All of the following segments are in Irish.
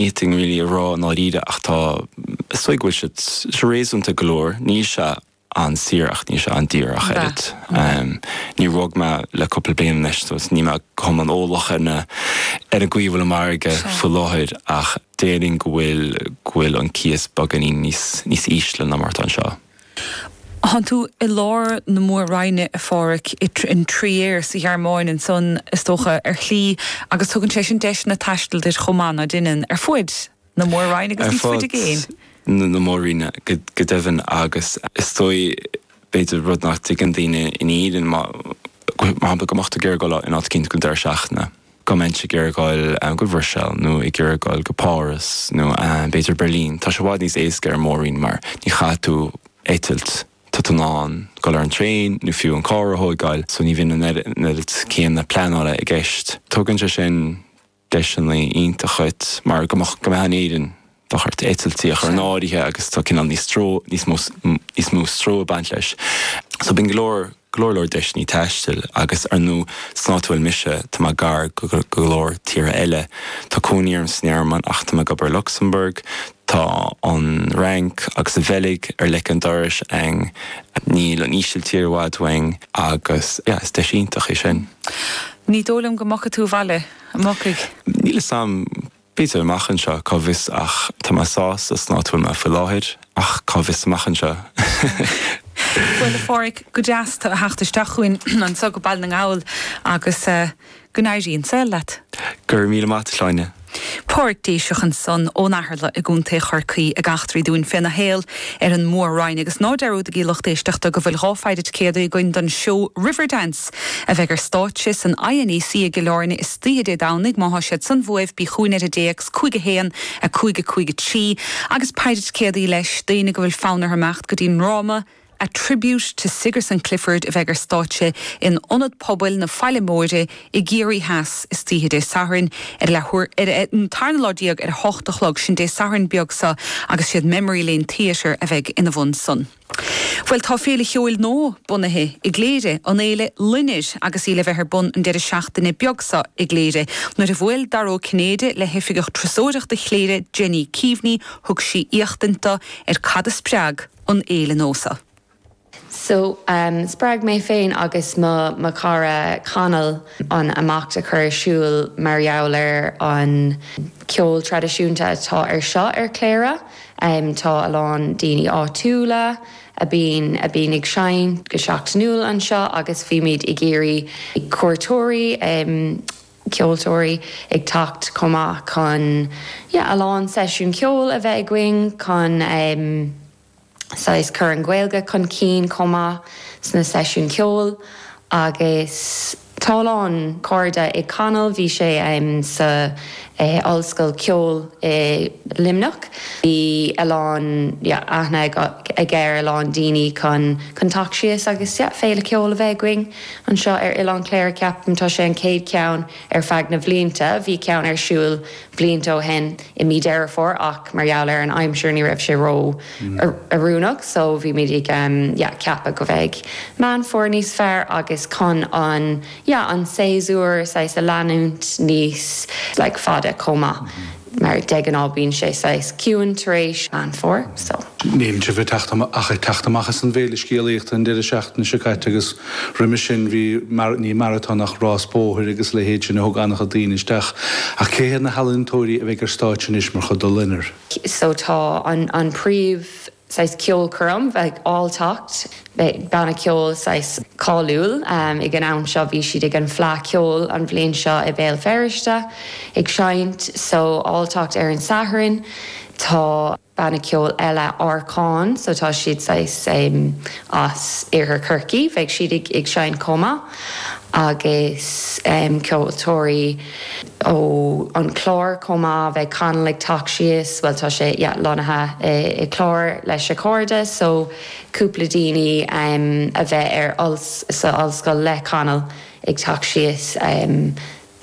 nothing really a rá i ndáiríre ach tá, is dóigh go bhfuil siad réasúnta go leor, níl sé an-saor ach níl sé an-daor ach an oiread. Níor bhog mé le cúpla bliain anois so níl mé an eolach ar na, ar an gcaoi a bhfuil an margadh faoi láthair ach déarfainn go bhfuil, go bhfuil an cíos beagáinín níos, níos ísle ná mar atá anseo. Tánn tú i lár na mór-roinne, a Phádraig, in Trier sa Ghearmáin ansan, is dócha, ar shlí, agus tugann sé sin deiseanna taistil duit chomh maith ná deineann ar fuaid na mór-roinne agus níos faide i gcéin. Ar fuaid na mór-roinne go deimhin agus is dóigh, b'fhéidir, rud nach dtuigeann daoine in Éirinn, mar shampla, go mbeadh tú ag iarraidh dul in áit eicínt don deireadh seachtaine. go mbeinnse ag iarraidh dul go dtí an Bhruiséil nó ag iarraidh dul go Páras nó b'fhéidir Beirlín. Tá sé i bhfad níos éasca ar an Mór-Roinn mar ní chaithfidh tú eitilt, tá tú in ann dul ar an traein nó fiú an carr a thóigeáil so ní bhíonn an oiread céanna pleanála i gceist. Tugann sé sin deiseanna iontacha dhuit mar go mbeadh in Éirinn bheadh ort eitiltí a chur in áirithe agus tá cineál níos stró, níos mó, níos mó stró ag baint leis. So bíonn go leor, go leor leor deiseannaí taistil agus ar ndú, san áit a bhfuil mise, tá mé gar go, go, go leor tíortha eile. Tá cónaí orm san Ghearmáin ach tá mé ag obair i Lucsamburg, tá an Fhrainc agus an Bheilg ar leic an dorais a'ainn, níl an Ísiltír i bhfad uainn agus yeah, is deis iontach í sin. Ní dóigh liom go dtiocfaidh tú abhaile, an dtiocfaidh? Níl 'fhios a'm. B'fhéidir amach anseo, cá bhfios ach tá mé sásta san áit a bhfuil mé faoi láthair, ach cá bhfios amach anseo? Bhuel, a Phádraig, go deas tu a theacht isteach chugainn anso go Baile na nGall agus go n-éirí an saol leat. Go raibh míle maith, agat a Shláine. Pádraig Déiseach ansan ón Eatharla i gContae Chorcaí ag eachtraí dúinn féna shaol ar an Mhór-Roinn. Agus ná dearúdaigí lucht éisteachta go bhfuil dhá phaicéad ticéadaí againn don seó Riverdance! A bheidh ar stáitse san INEC i gCill Áirne istoíche Dé Domhnaigh má tá siad san uaibh bí chúghainn ar an dtéacs 5 1 5 5 3 agus paicéad ticéadaí leis d'aoinne go bhfuil fonn air imeacht go dtí an ndráma A Tribute to Sigerson Clifford a bheidh ar stáitse in Ionad Pobail na Faille Móire i gCiarraí Theas istoíche Dé Sathairn ar a leath an tarna lá déag ar a hocht a chlog sin Dé Sathairn beag seo agus is iad Memory Lane Theatre a bheidh ina bhun san. Bhuel tá Féile Cheoil nua bunaithe i gCléire, an fhéile Loinnir agus í le bheith ar bun an deireadh seachtaine beag seo i gCléire. Nuair a bhuail Dara Ó Cinnéide le hoifigeach turasóireachta Chléire Jenny Keaveney thug sí éachtaint do ar cad a spreag an fhéile nua so. So spreag mé féin agus mo mo chara Conall an imeacht a chur ar siúl mar gheall ar an ceol traidisiúnta atá anseo ar Chléire. Tá a lán daoine áitiúla a bhíonn a bhíonn ag seinnt go seachtainiúil anseo agus bhíomar ag iarraidh cuairteoirí, ceolteoirí ag teacht chomh maith chun yeah a lán seisiúin ceoil a bheith againn chun saghas cur an Ghaeilge chun cinn chomh maith sna seisiúin ceoil agus. Tá a lán cairde ag Conall. Bhí sé sa Ollscoil Ceoil i Luimneach. Bhí a lán aithne aige ar a lán daoine chun teacht síos agus Féile Ceoil a bheith againn anseo ar Oileán Chléire. Ceapaim tá sé an chéad cheann ar feadh na bhlianta. Bhí ceann ar siúl blianta ó shin i mí Deireadh Fómhair ach mar gheall ar an aimsir ní raibh sé ró oiriúnach so bhí muid ag yeah ceapadh go mbeidh Meán Fómhair níos fearr agus chun an yeah an séasúr saghas a leanúint níos like fada chomh maith mar de ghnáth bíonn sé saghas ciúin tar éis Meán Fómhair so. Níl sibh ach ag teacht amach as an bhféile scéalaíochta an deireadh seachtaine seo caite agus Roimhe sin bhí, ní maratón ach rás bóthair agus a leithéid sin a thug an-chuid daoine isteach. Ach cé hiad na healaíontóirí a bheidh ar stáitse anois mar chuid de Loinnir? So tá an príomh saghas ceolchoirm beidh Alltacht, banna ceoil saghas cáiliúil ag an am seo, bhí siad ag an Fleadh Cheoil an bhliain seo i mBéal Feirste ag seinnt. So Alltacht ar an Satharn tá. banna ceoil eile Árcáin so tá siad saghas as iarthar Chorcaí beidh siad ag ag seinnt chomh maith agus ceoltóirí ó an Clár chomh maith beidh Conall ag teacht síos bhuel tá sé yeah lonnaithe i Clár lena chairde so cúpla daoine a bheith ar sa Ollscoil le Conall ag teacht síos.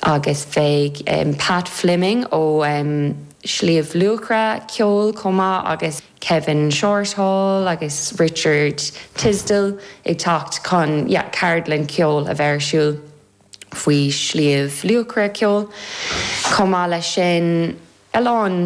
Agus beidh Pat Fleming ó Shliabh Luachra ceoil chomh maith agus Kevin Shorthall agus Richard Tisdall ag teacht chun ceardlann cheoil a bheith ar siúl faoi Shliabh Luachra ceoil. Chomh maith leis sin a lán.